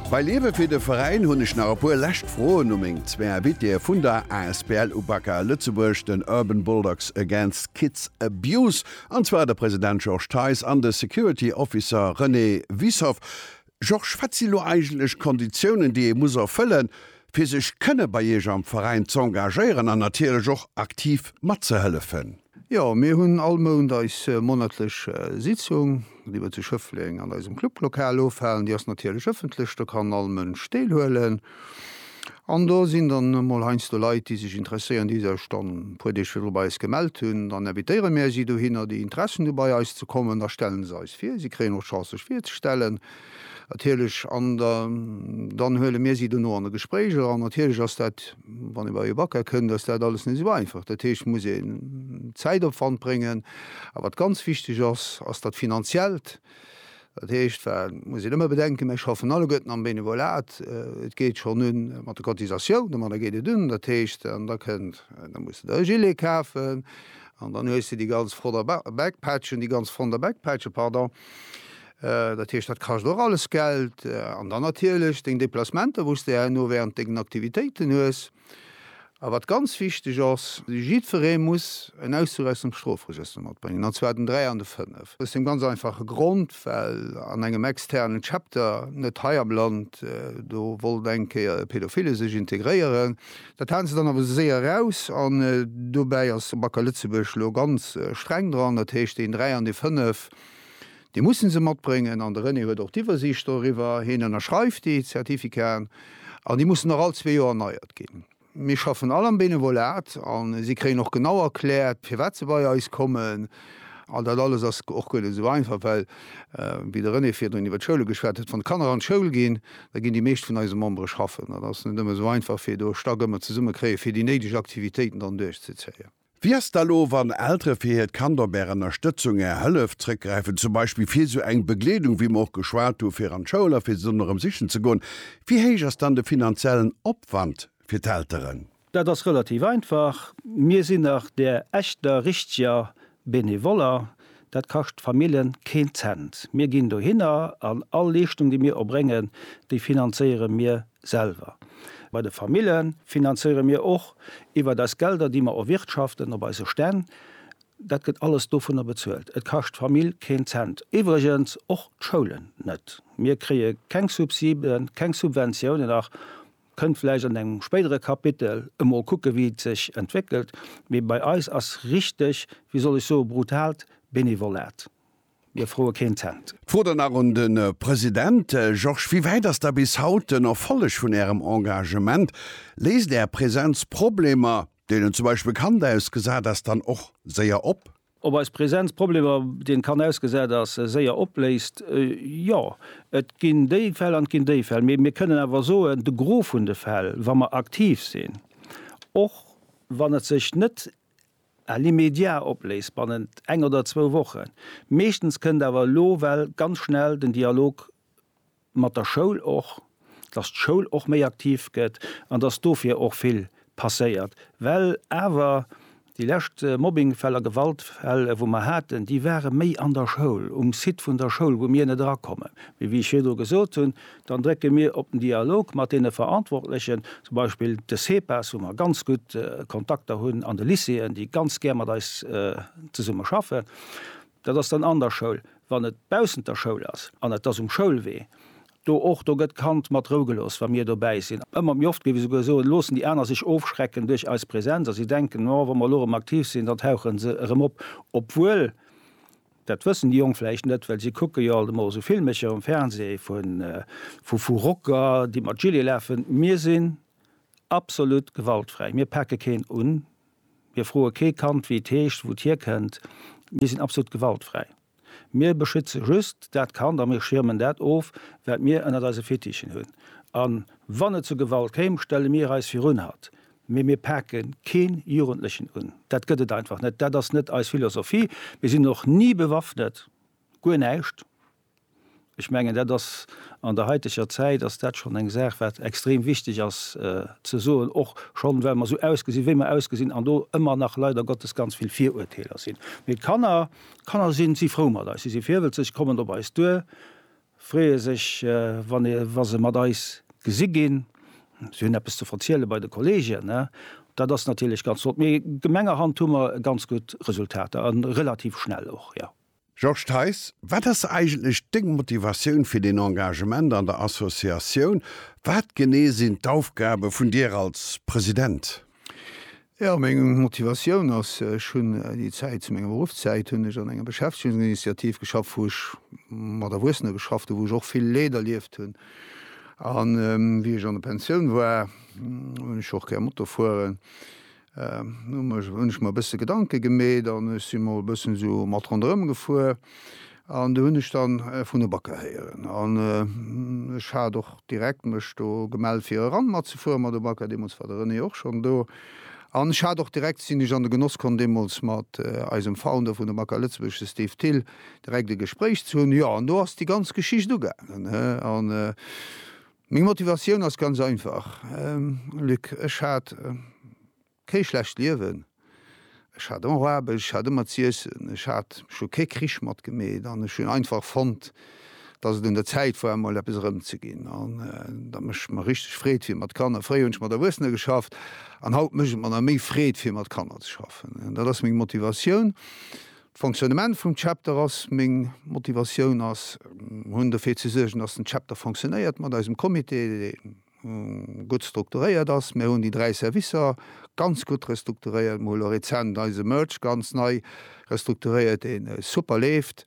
Bei Liewe fir de Veräin hunn ech nach e puer lescht Froen u meng zwee Invitéë vun der asbl Ubaka Lëtzebuerg, den Urban Bulldogs Against Kids Abuse, an zwar de President Georges Theis an de Security Officer René Wiessoff. Georges, wat si lo eigentlech d'Konditiounen, déi ee muss erfëllen, fir sech kënne bei Iech am Veräin z'engagéieren an natierlech och aktiv matzehëllefen? Jo, mir hunn all Mount eis monatlech Sitzung, déi mer zu Schëffleng an eisem Clublokal ofhalen. Déi ass natierlech ëffentlech, do kann all Mënsch deelhuelen. An do sinn dann emol heiansdo Leit, déi sech interesséieren, déi sech dann e puer Deeg virdru bei eis gemellt hunn. Dann invitéiere mir si dohinner, déi Interessen hu bei eis ze kommen. Da stelle se eis vir, si kréien och d'Chance sech virzestellen. Natierlech, an dann huele mir si dono an e Gespréich eran. Natierlech ass dat, wann ee bei ee Bacca kënnt, ass dat alles net esou einfach. Dat heescht, et muss een Zäitopwand bréngen. A wat ganz wichteg ass, ass dat Finanziellt. Dat heescht, well, muss een ëmmer bedenken, mir schaffen alleguerten am Benevolat. Et geet schonn un mat de Cotisatiounen, ma da geet et un. Dat heescht, an da kënnt, da muss de der e Gilet kafen an dann hues de déi ganz Frotter Backpatchen, déi ganz Fronter Backpatchen, pardon. Dat heescht, dat kascht och alles Geld. An dann natierlech deng Deplacementer, wou s de herno während dengen Aktivitéiten hues. A wat ganz wichteg ass, Jiddweree muss en Auszug aus dem Strofregëster matbréngen, an zwar den 3 an de 5. Aus deem ganz einfache Grond, well an engem externen Chapter, net hei am Land, do wollt eng Kéier e Pädophile sech integréieren. Dat haten se dann awer esou séier eraus. An dobäi ass Bacca Lëtzebuerg elo ganz streng dran. Dat heescht, deen 3 an dee 5, Déi mussen se matbréngen an de René huet och d'Iwwersiicht doriwwer. Hien ënnerschreift déi Zertifikaten an déi mussen och all zwee Joer erneiert ginn. Mir schaffen all am Benevolat a si kréien och genau erkläert, firwat se bei eis kommen. An dat alles ass och guer net esou einfach, well, wéi de René virdrun iwwer d'Schoule geschwat huet, wann d'Kanner an d'Schoul ginn, da ginn déi meescht vun eise Membere schaffen. Dat ass net ëmmer esou einfach, fir do Stack ëmmer zesummekréien, fir déi néideg Aktivitéiten dann duerchzezéien. Wéi ass da lo wann Eltere fir hiert Kand op Är Ënnerstëtzung, Är Hëllef zréckgräifen, zum Beispill fir sou eng Begleedung wéi mer och geschwat hu fir an d'Schoul a fir se dunn erëm sichen ze goen? Wéi héich ass dann de finanziellen Opwand fir d'Elteren? Dat ass relativ einfach, mir sinn nach där echter richteger Benevoller, Dat kascht d'Famillen keen Cent. Mir ginn dohinner an all Leeschtung, déi mir erbréngen, déi finanzéiere mir selwer. Bei de Famille finanzéiere mir och iwwert eis Gelder, déi mer erwirtschaften op eise Stänn. Dat gëtt alles dovunner bezuelt. Et kascht d'Famill keen Cent. Iwwregens och d'Schoulen net. Mir kréie keng Subsiden, keng Subventiounen nach. Kënnt vläicht an engem spéidere Kapitel emol kucke wéi et sech entwéckelt, mee bei eis ass richteg, wéi soll ech soe brutaalt Benevolat. Mir froe keen Cent. D'Fro dann nach un de President. Georges, wéi wäit ass da bis haut den Erfolleg vun Ärem Engagement? Léist Är Presenz Problemer, deenen zum Beispill Kand ausgesat ass, dann och séier op? Ob eis Präsenz Problemer, déi en kann ausgesat ass, séier opléist? Jo, et ginn déi Fäll an et ginn déi Fäll. Mee mir kënnen awer soen, de Gros vun de Fäll, wa mer aktiv sinn, och wann et sech net à l'immédiat opléist, bannent eng oder zwou Wochen, meeschtens kënnt awer elo well ganz schnell den Dialog mat der Schoul och, dass d'Schoul och méi aktiv gëtt an dass dofir och vill passéiert. Well awer déi lescht Mobbingfäller, Gewaltfäll, wou mer haten, déi ware méi an der Schoul, um Site vun der Schoul, wou mir net erakommen. Mee wéi ech virdru gesot hunn, dann drécke mir op den Dialog mat deene Verantwortlechen, zum Beispill de CEPAS, wou mer ganz gutt Kontakter hunn, an de Lycéeën, déi ganz gär mat eis zesumme schaffen. Dat ass dann an der Schoul. Wann et baussent der Schoul ass an et ass um Schoulwee, do och, do gëtt d'Kand mat Rou gelooss, wa mir dobäi sinn. Ëmmer méi oft, géif ech esouguer soen, loossen déi aner sech ofschrecken duerch eis Präsenz a si denken, oh, wa mer elo erëm aktiv sinn, dann tauche se erëm op. Obwuel, dat wëssen déi Jonk vläicht net, well si kucke jo alt emol esou Filmecher um Fernseh vu Rocker, déi mat Gilet lafen. Mir sinn absolut gewaltfräi, mir pake keen un. Mir froe kee Kand, wéi et heescht, wou et hierkënnt. Mir sinn absolut gewaltfräi. Mir beschütze just dat Kand a mir schiermen dat of, wat mir ënnert eise Fittichen hunn. A wann et zu Gewalt kéim, stelle mir eis virun hatt. Mee mir pake kee Jugendlechen un. Dat gëtt et einfach net. Dat ass net eis Philosophie. Mir sinn och ni bewaffnet. Guer näischt. Ech mengen, dat ass an der haiteger Zäit ass dat schonn eng Saach, wat extrem wichteg ass ze soen, och schonn, well mer esou ausgesinn, wéi mer ausgesinn an do ëmmer nach leider Gottes ganz vill Viruerteeler sinn. Mee d'Kanner, d'Kanner sinn, si frou mat eis, si si virwëlzeg, kommen op eis duer, freeë sech, wann ee, wa se mat eis gesi ginn, si hunn eppes ze verziele bei de Kolleegen. Dat ass natierlech ganz flott. Mee gemengerhand hu mer ganz gutt Resultater a relativ schnell och, jo. Georges Theis, Wat ass eigentlech deng Motivatioun fir den Engagement an der Associatioun? Wat genee sinn d'Aufgabe vun dir als President? Jo, meng Motivatioun ass, ech hunn déi Zäit, zu menger Beruffszäit hunn ech an enger Beschäftegungsinitiativ geschafft, wou ech mat Erwuessene geschafft hunn, wou ech och vill Leed erlieft hunn. A wéi ech an der Pensioun war, hunn ech och gär Moto fueren. Hunn ech mer e bësse Gedanke gemeet an ech si mol e bëssen esou mat ronderëm gefuer an do hunn ech dann vun e Bakker héieren an ech hat och direkt mech do gemellt fir eran matzefueren mat e Bakker. Deemools war de René och schonn do an ech hat och direkt sinn ech an de Genoss komm deemools mat eisem Founder vun de Bakker Lëtzebuerg, de Steve Thill, direkt e Gespréich ze hunn. Jo an do ass déi ganz Geschicht ugaangen an Meng Motivatioun ass ganz einfach, Luc, ech hat kee schlecht Liewen, ech hat och Aarbecht, ech hat ëmmer z'iessen, ech hat scho kee Krich matgemeet an ech hunn einfach fonnt, datt et un der Zäit war emol eppes erëmzeginn an dat mécht mer richteg Freed fir mat Kanner. Fréier hunn ech mat Erwuessener geschafft an haut mécht et mer nach méi Freed fir mat Kanner ze schaffen. Dat ass meng Motivatioun. D'Fonctionnement vum Chapter ass meng Motivatioun ass hunn dofir ze suergen, dass den Chapter fonctionnéiert mat eisem Comité, dee gutt strukturéiert ass. Mir hunn déi dräi Servicer ganz gutt restrukturéiert. Mir hu lo rezent eise Merch ganz nei restrukturéiert, dee super leeft,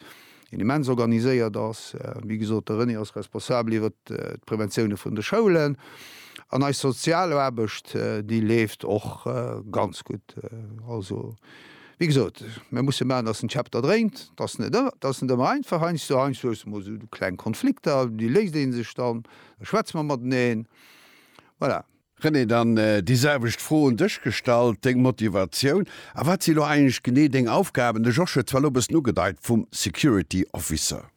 deen immens organiséiert ass. Wéi gesot, de René ass responsabel iwwer d'Präventioune vun de Schoulen. An eis Sozialaarbecht, déi leeft och ganz gutt. Also Wéi gesot, mir musse maachen, dass den Chapter dréint. Dat ass net, dat ass net ëmmer einfach. Heiansdo, heiansdo hues du mol esou kleng Konflikter, déi léist ee sech dann, da schwätze mer mateneen. Voilà. René, dann déi selwecht Fro un dech gestallt, deng Motivatioun a wat si elo eigentlech genee deng Aufgaben? De Josh huet zwar elo e bëssen ugedeit, vum Security Officer.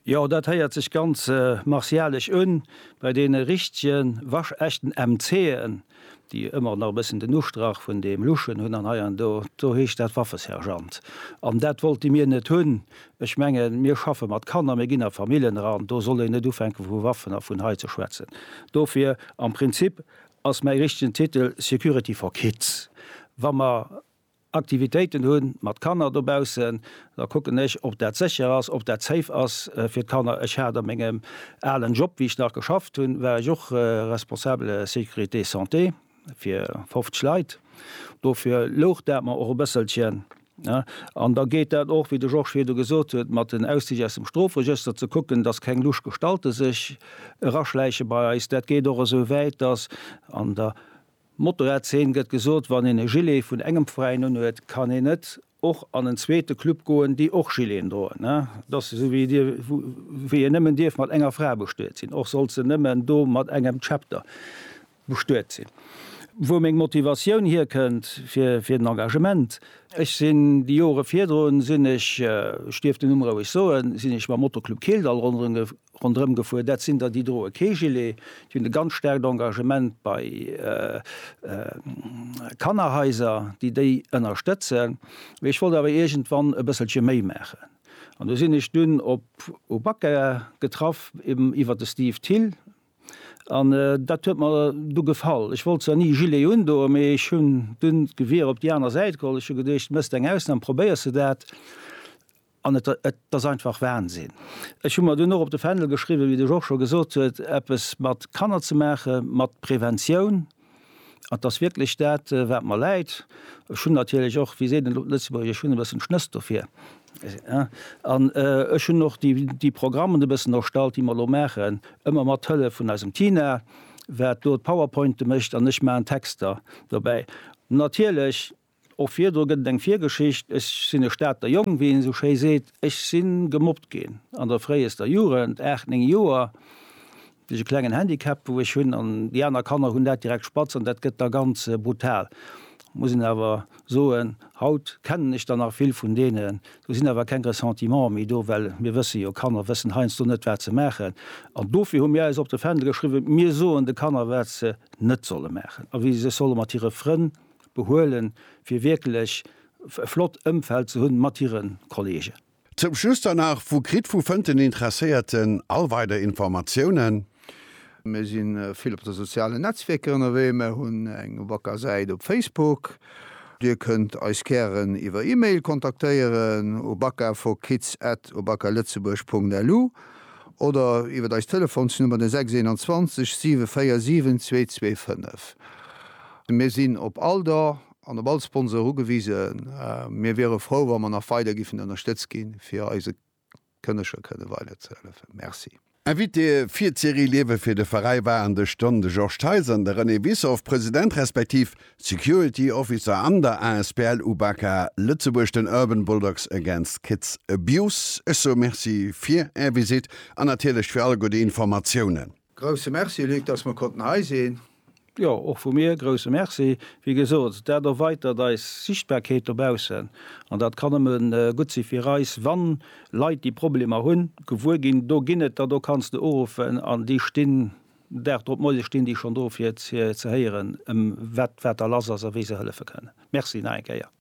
Jo, dat héiert sech ganz martialesch un, bei deene richtege waschechten MCen, déi ëmmer nach e bëssen den Ustrach vun deem luschen hunn, an hei an do, do heescht dat Waffesergeant. An dat wollte mir net hunn. Ech mengen, mir schaffe mat Kanner, mir ginn a Famillen eran, do soll een net ufänke vu Waffen a vun hei ze schwätzen. Dofir, am Prinzip ass mäi richtegen Titel Security for kids. Wa mer Aktivitéiten hu mat Kanner dobaussen, da kucken ech, ob dat sécher ass, ob dat safe ass fir d'Kanner. Ech hat a mengem alen Job, wéi ech nach geschafft hunn, war ech och Responsable Sécurité Santé fir 50 Leit. Dofir louch dat mer och e bësselchen. An da geet dat och, wéi de Georges virdu gesot huet, mat den Auszich aus dem Strofregëster, ze kucken, dass keng lusch Gestalte sech eraschläiche bei eis. Dat geet och esou wäit, dass an der Motorradzeen gëtt gesot, wann een e Gilet vun engem Veräin unhuet, kann een net och an en zweete Club goen, déi och Gileten droen. Et ass esou wéi dir, wéi een nëmmen dierf mat enger Fra bestuet sinn, och sollt se nëmmen do mat engem Chapter bestuet sinn. Wou meng Motivatioun hierkënnt fir fir den Engagement, Ech sinn déi Jore virdrun sinn ech, ech dierf den Numm roueg soen, sinn ech mam Moto-Club Kildall ronderëm Rondrëm gefuer. Dat sinn der, déi droe kee Gilet. Déi hunn e ganz staarkt Engagement bei Kannerhaiser, déi déi ënnerstëtzen. Mee ech wollt awer iergendwann e bësselche méi maachen. An do sinn ech dunn op u Bacca getraff, eben iwwert de Steve Thill. An dat huet mer du gefall. Ech wollt zwar ni e Gilet undoen, mee ech hunn dunn d'Gewier op déi aner Säit geholl. Ech hu geduecht, méchs eng Ausnam, probéiers de dat. An et ass einfach Wahnsinn. Ech hu mer dunn och op de Fändel geschriwwen, wéi de Georges scho gesot huet, eppes mat Kanner ze maache mat Preventioun. An et ass wierklech dat, wat mer läit. Ech hunn natierlech och, wéi seet een elo op Lëtzebuergesch, ech hunn e bëssen d'Schnëss dofir. An ech hunn och déi Programmen e bëssen erstallt, déi mer elo maachen, ëmmer mat Hëllef vun eisem Tina, wat do d'Powerpointe mécht an ech maachen d'Texter dobäi. Natierlech Och virdru gëtt et eng Virgeschicht, Ech sinn e Stater Jong, wéi een esou schéi seet. Ech si gemobbt ginn an der fréiester Jugend, aacht, néng Joer. Et ass e klengen Handicap, wou ech hunn an déi aner Kanner hunn dat direkt spatz an dat gëtt da ganz brutal. Muss een awer soen, haut kennen ech der nach vill vun deenen. Do sinn awer keng Ressentimenter méi do, well mir wësse jo, Kanner wëssen heiansdo net, wat se maachen. An dofir hu mir eis op de Fändel geschriwwen, mir soen de Kanner, wat se net solle maachen a wéi se sech solle mat hire Frënn behuelen, fir wierklech e flott Ëmfeld ze hunn mat hire Kolleegen. Zum Schluss dann nach, Wou kritt, wou fënnt den Interesséierten all weider Informatiounen? Mir si vill op de sozialen Netzwierker ënnerwee. Mir hunn eng wacker Säit op Facebook. Dir kënnt eis gären iwwer E-Mail kontaktéieren u bakaforkids@obakaletzebourg.lu oder iwwer eis Telefonsnummer, den 621 747 225. Mir sinn op all Don an op all Sponsor ugewisen. Mir wiere frou, wa mer nach weider giffen ënnerstëtzt ginn, fir eise Kënneger kënne weider ze hëllefen. Merci. Invité fir d'Serie Liewe fir de Veräi war an de Stonn de Georges Theis an de René Wissoff, President respektiv Security Officer an der asbl UBAKA Lëtzebuerg, den Urban Bulldogs Against Kids Abuse. Ech soe Merci fir Är Visite an natierlech fir all gudde Informatiounen. Grousse Merci Luc, dass mer konnten hei sinn. Jo, och vu mir grousse Merci. Wéi gesot, dat erweitert eis Sichtbarkeet dobaussen an dat kann nëmme gutt si fir eis, wann Leit déi Problemer hunn, gewuer ginn, do ginn et der, do kanns de uruffen an déi stinn Dag drop, moies stinn déi schonn do fir ze héieren, wat wat da lass ass a wéi se hëllefe kënnen. Merci nach eng Kéier.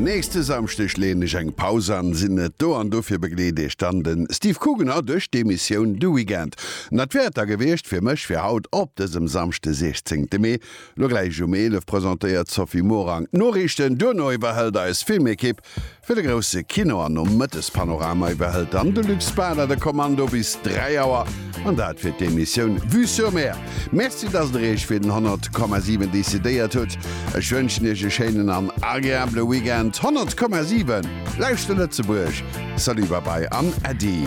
Nächste Samschdeg leeën ech eng Paus an, sinn net do an dofir begleet iech dann de Steve Kugener duerch d'Emissioun de Weekend. An dat wär et da gewiescht fir mech fir haut op dësem Samschde 16 de Mee. Lo gläich um 11 presentéiert d'Sophie Morang d'Noriichten, duerno iwwerhëlt eis Filmekipp Fir de grousse Kino an Nomëttespanorama iwwerhëlt dann de Luc Spada de Kommando bis 3 Auer. An dat fir d'Emissioun Vue sur Mer. Merci, dass Der Iech fir den 100,7 decidéiert hutt. Ech wënschen Iech e schéinen an agreabele Weekend. 100,7, Lauschter Lëtzebuerg! Salut, Babai an Äddi!